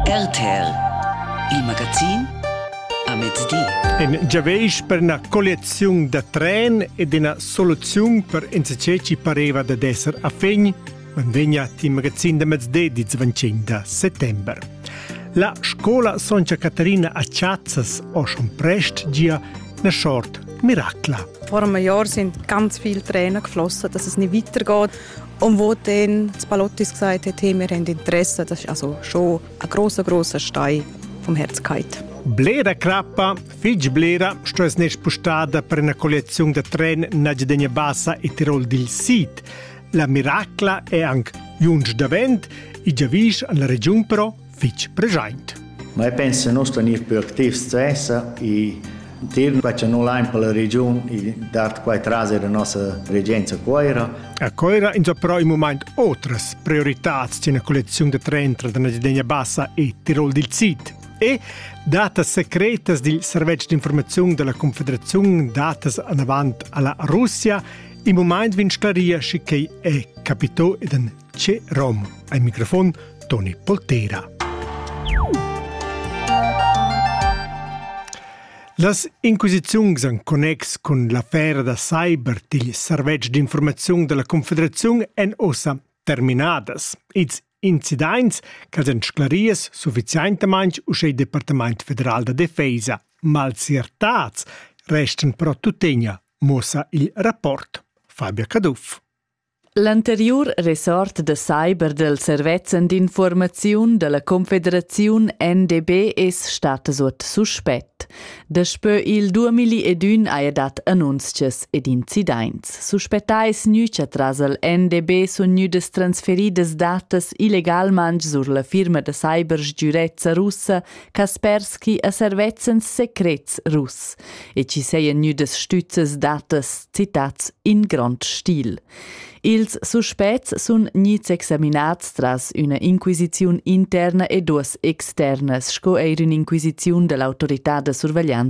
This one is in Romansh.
RTL Il magazin a mezdi. En giaveisch per una collezione da tren ed una soluzione per insce ci pareva da esser a fin, manvegnat il magazin da mezdi di 25 da settembre. La scola Soncia Caterina a Chazzas o schon prest gia na short miracla. Vor einem Jahr sind ganz viele Tränen geflossen, dass es nicht weitergeht. Und wo den Spalottis gesagt hätte, wir haben Interesse, das ist also schon ein großer, großer Stein vom Herzkeit. Bleda crappa, fig blera, sto es ne spustada per una collezione da tren Najdenia Bassa e Tirol dil Sid. La miracla è anche junge davent e giavisch alla region però fitg preschaint. Ma io penso che noi stanno più attivi stessa e Til faccia nu lain per la regiun e dat quai trase la nostra regenza Coira. A Coira inzapro in moment otras prioritats c'è una collezione da trentra della Cidegna Bassa e Tirol dil Sid e datas secretas dil servetsch d'informazione della Confederazione datas anavant alla Russia in moment vin sclaria schi che è capito ed en C'è Rom al microfon Toni Poltera. Las inquisiziuns en connex cun l'affera da cyber digl servetsch d'informaziun della Confederazione èn ossa terminadas. Ils incidents ch'els èn sclaries sufficientamain uschè il Departament federal da defesa. Malziertats restan però tuttegna, muossa il rapport Fabio Caduff. L'anteriur ressort da cyber dal servezzan d'infuormaziun da la Confederaziun NDB es stat suot suspett. Daspö il 2001 haja dat annunzchas ed incidaints. Suspettais gnü cha tras il NDB sun gnüdas transferidas datas illegalmaing sur la firma da cyber sgürezza russa Kaspersky a servezzens secrets russ e ci seien gnüdas stüzzes datas citats in grand stil. Ils suspets sun gnits examinats tras üna inquisiziun interna e duos externas sco eir ün'inquisiziun da l'autorità da surveglianza